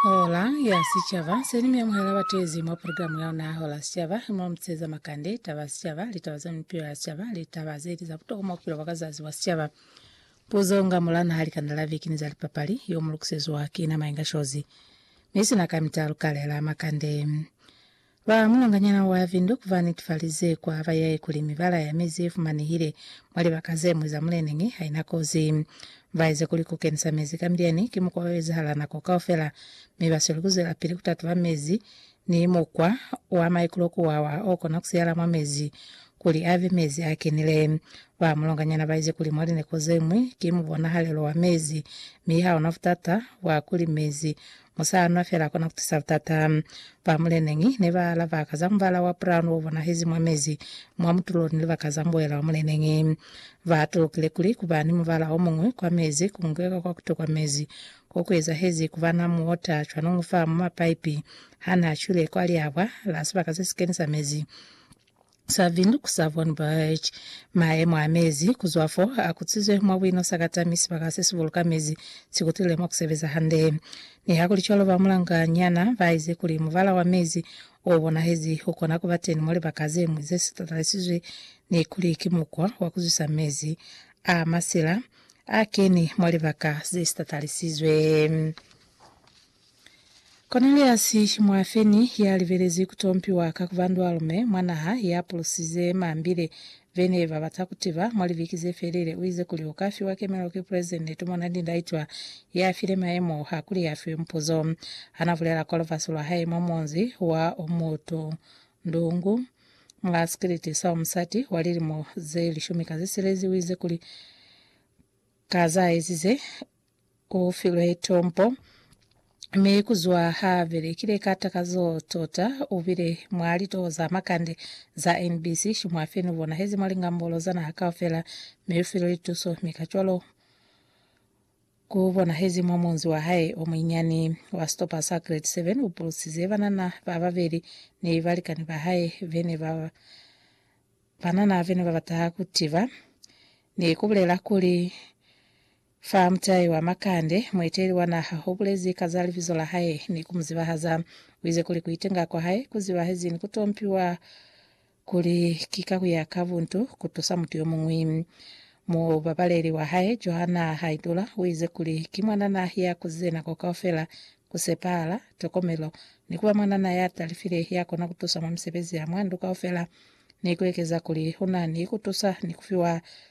Hola ya Sicaba, se ni mi amuhela batezi mwa programu ya ona ya Hola ya Sicaba, mo mu teza makande, taba ya sicaba, litaba za mipilo ya sicaba, litaba ze li za butokwa mwa bupilo bwa ka zazi bwa sicaba. Puzo nga mula naha likanda la viki ni za lipapali, yo mu lukiseziwa ki na Mainga Shozi. Mi sina kamita lukale la makande. Ba mulanganyana wa Windhoek ba netefalize ku aba yae kuli mibala ya mezi ye fumanehile mwa libaka ze ñwi za muleneñi ha i na kozi. Ba eze kuli ku kenisa mezi ka milyani ki mukwa o ezahala nako kaufela, mi ba sweli ku zwelapili ku tatuba mezi ni mukwa wa maikulo ku wawa o kona ku siyala mwa mezi kuli a be mezi a kenile. Ba mulanganyana ba ize kuli mwa lineko ze ñwi ki mubonahalelo wa mezi, mi ha ona butata bwa kuli mezi Musaanwa fela kona kutusa butata. Ba muleneñi ne ba lava ka za mubala wa brown o bonahezi mwa mezi, mwa mutulo ni libaka za mboela wa muleneñi. Ba tulukile kuli kuba ni mubala o muñwi kwa mezi ku ngweka kwa kuto kwa mezi, ko ku ezahezi kuba na muota cwanungu fa mwa mapaipi ha na cwile kwa liabwa la sibaka se si kenisa mezi. Serving ku Savon Beach. Maemo a mezi ku zwa fo a kutsizwe mwa buino sakata mi sibaka se si buluka mezi si kutile mwa ku sebeza hande. Nihakulicwalo, ba mulanga nyana ba ize kuli mubala wa mezi o bonahezi u kona ku ba teni mwa libaka ze ñwi ze si tatalisizwi ni kuli ki mukwa wa ku zwisa mezi a masila a keni mwa libaka ze si tatalisizwe. Koneliasi mwafeni ya libelezi ku tompiwa ka kuba ndwalume mwa naha ya pulusize mambile ve ne ba bata ku tiba mwa libiki ze felile, u ize kuli u ka fiwa kemelo ki Pulesidente tumona ni ndaitwa ya file mayemo ha kuli a fiwe mupuzo. Ha na bulela kwa lubasi lwa hae mwa munzi wa Omutu Ndungu mwa sikiliti sa Omusati wa lilimo ze lishumi ka ze silezi, u ize kuli ka za ezize, U filwe tombo, mi kuzwa ha belekile ka takazo tota, u bile mwa litoho za makande za NBC, shimwa fe nu bonahezi mwa lingambolo za naha kaufela, mi u filwe lituso, mi kacwalo ku bonahezi mwa munzi wa hae o munyinyani wa sitopa sa grade 7. U pulusize banana ba babeli ni balikani ba hae bene ba banana bene ba bata ku tiba ni ku bulela kuli, Fa mutai wa makande, mueteli wa naha u bulezi ka za libizo la hae ni ku mu zibahaza. U ize kuli ku itenga kwa hae ku zibahezi ni ku tompiwa kuli ki ka ku ya ka buntu ku tusa mutu yo muñwi. Mubabaleli wa hae, Johanna Haidula, u ize kuli ki mwanana ya kuzize nako kaufela, ku sepahala, tokomelo, ni ku ba mwanana ya talifile ya kona ku tusa mwa misebezi ya mwa ndu kaufela ni ku ekeza kuli u na ni ku tusa ni ku fiwa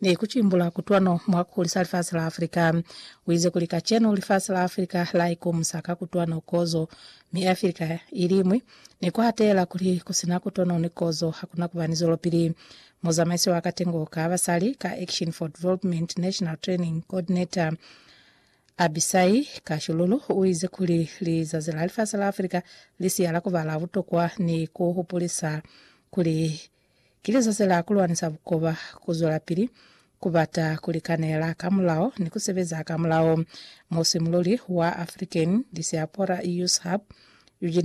ni ku cimbula kutwano mwa ku hulisa lifasi la Afrika. U ize kuli kacenu lifasi la Afrika la ikumusa ka kutwano, kozo, mi Afrika i liñwi, ni ku hatela kuli ku si na kutwano ni kozo ha ku na ku ba ni zwelopili. Muzamaisi wa Katengo ka Basali ka Action for Development National Training Coordinator, Abisai Kashululu, u ize kuli lizazi la lifasi la Afrika li siya la ku ba la butokwa ni ku hupulisa kuli Ki lisosela ku lwanisa bukoba, ku zwelapili ku bata ku likanela ka mulao ni ku sebeza ka mulao. Musimululi wa African Diaspora Youth Hub, Eugene Yamane,